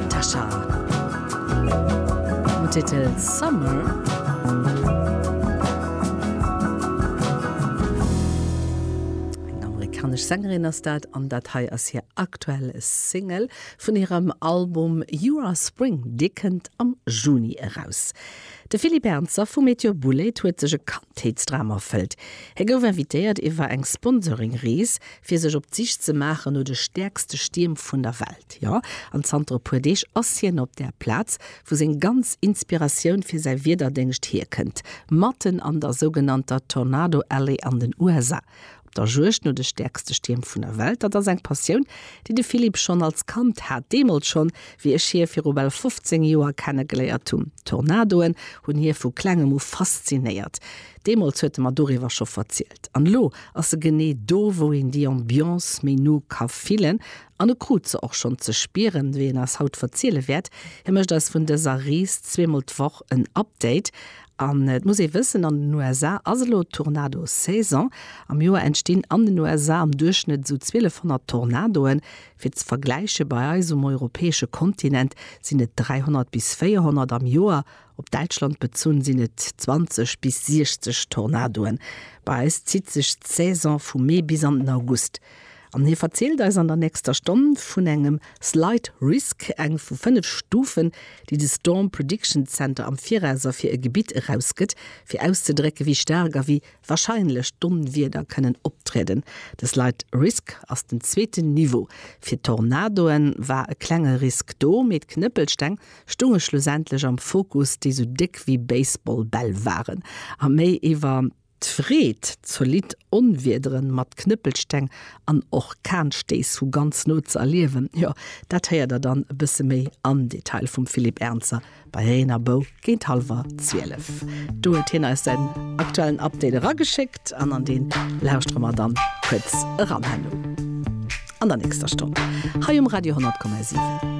Tasha mam Titel Summer. Eng amerikanesch Sängerin ass dat an dat hei ass hir aktuell Single vun hirem Album You Are Spring, dee kënnt am Juni eraus. De Philippe Ernzer vu Meteor Boulét huet sech e Kandheetsdram erfëllt. Hie gouf invitéiert iwwer eng Sponsoring-Rees fir sech op d'Sich ze maachen no de stäerkste Stierm vun der Welt, jo, an zanter e puer Deeg ass hien op där Plaz, wou seng ganz Inspiratioun fir säi Wiederdéngscht hierkënnt, matten an der sougenannter Tornado Alley an den USA, op der Juegd no de stäerkste Stierm vun der Welt. Dat ass eng Passioun, déi de Philippe schonn als Kand hat, deemools schonn, wéi ech hie viru bal 15 Joer kennegeléiert hunn. Tornadoen hunn hie vu Klengem u faszinéiert, deemools huet e mer doriwwer scho verzielt. An elo ass se genee do, wou een déi Ambiance méi no ka fillen, an e krut se och schonn ze spieren, wéi en eis haut verziele wäert. Hie mécht eis vun dëser Rees zweemol d'Woch en Update. An et muss ee wëssen, an den USA ass elo Tornado-Saison. Am Joer entstinn an den USA am Duerchschnëtt esou 1200 Tornadoen. Fir ze vergläichen, bei eis um europäesche Kontinent sinn et 300 bis 400 am Joer. Op Däitschland bezunn sinn et 20 bis 60 Tornadoen. Bei eis zitt sech d'Saison vum Mee bis an den August. An hie verzielt eis an der nächster Stonn vun engem Slight Risk, eng vu fënnef Stufen, déi de Storm Prediction Center am Viraus a fir e Gebitt erausgëtt, fir auszedrécken, wéi staark a wéi warscheinlech d'Onwieder kënnen optrieden. De Slight Risk ass den zweeten Niveau. Fir d'Tornadoe war e klenge Risk do, mee d'Knëppelsteng stunge schlussendlech am Fokus, déi sou déck wéi Baseball-Bäll waren a méi iwwer d'Freed, zolidd Onwiedere mat Knëppelsteng an Orkanstéiss vu ganz no ze erliewen, jo, dat héiert der dann e bësse méi am Detail vum Philippe Ernzer bei Reen a Bou géint hallwer zwielef. Do huet hien eis säin aktuellen Update erageschéckt an an dee lauschtere mer dann kuerz eran herno an der nächster Stonn hei um Radio 10,7.